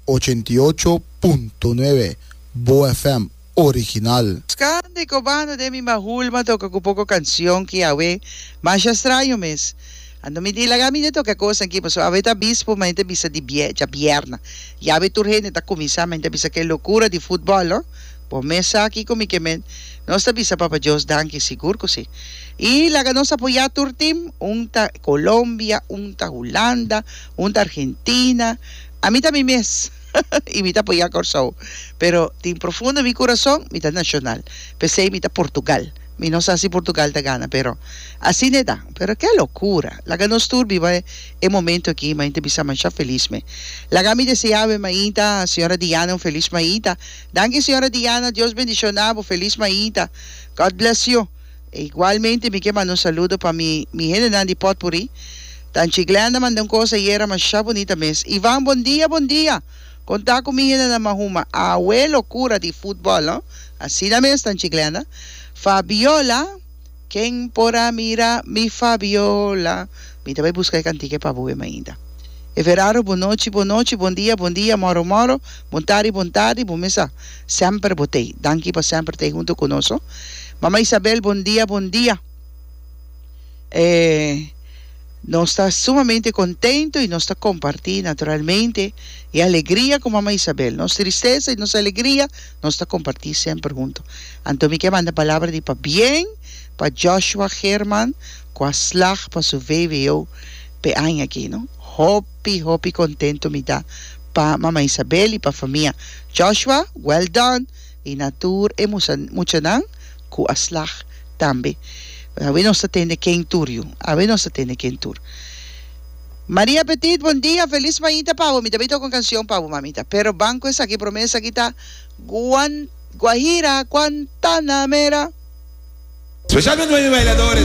Ochenta i ocho punto nuebe, Boa FM original. Scan de Cobano den mi mahul ma toca cu poco cancion ki awe masha straño mes. Ando mi di laga mi de toca e cosnan ki paso awe ta bispo ma ente bisa di djabièrna y awe tur hende ta cuminsa ma ente a bisa ke locura di futbol no. Bo mes sa kico mi ke men. Nos ta bisa Papa Dios danki sigur cu si. I laga nos apoyá tur tim, un ta Colombia, un ta Hulanda, un ta Argentina, ami ta mi mes i mi ta apoyá Kòrsou, pero tin profundo mi kurason mi ta Nacional, p'esei mi ta Portugal, mi no sa si Portugal ta gana pero asina e ta, pero ke lokura, laga nos tur biba e momento aki mainta bisa masha felis me, laga mi deseá awe mainta señora Diana un felis mainta, danki señora Diana Dios bendicioná bo felis mainta God bless you. E igualmente mi ke manda un saludo pa mi mi hendenan di Potpourri. Tanchi Glenda manda un kos ayera masha bunita mes. Ivan bon dia bon dia. Kon ta ku mi hendenan mahuma awe lokura di futbol no. Asina mes Tanchi Glenda. Fabiola Ken por a mira mi Fabiola mi ta bai buska e kantika e pa bo wim ainda. Everardo Bon nochi bon nochi bon dia bon dia moro moro bon tardi bon tardi bon mesa. Semper bo t'ei. Danki pa semper t'ei huntu ku nos ho. Mama Isabel bon dia bon dia. E nos ta sumamente kontento i nos ta kompartí naturalmente e alegria ku Mama Isabel. Nos tristesa i nos alegria nos ta kompartí semper huntu. Anto mi ke manda palabra di pabien pa Joshua German ku a slag pa su vvo p'e aña aki no. Hopi hopi kontento mi ta. Pa Mama Isabel y pa famia Joshua well done y na tur e muchanan cu a slag tambe awe nos ta tende ken tur yu awe nos ta tende ken tur Maria Petit bon dia feliz mañita pa bo mi ta bay toca un cancion pa bo mamita pero banco esaki prome esaki ta Guan Guajira Guantanamera. Special pa nueve bailadores.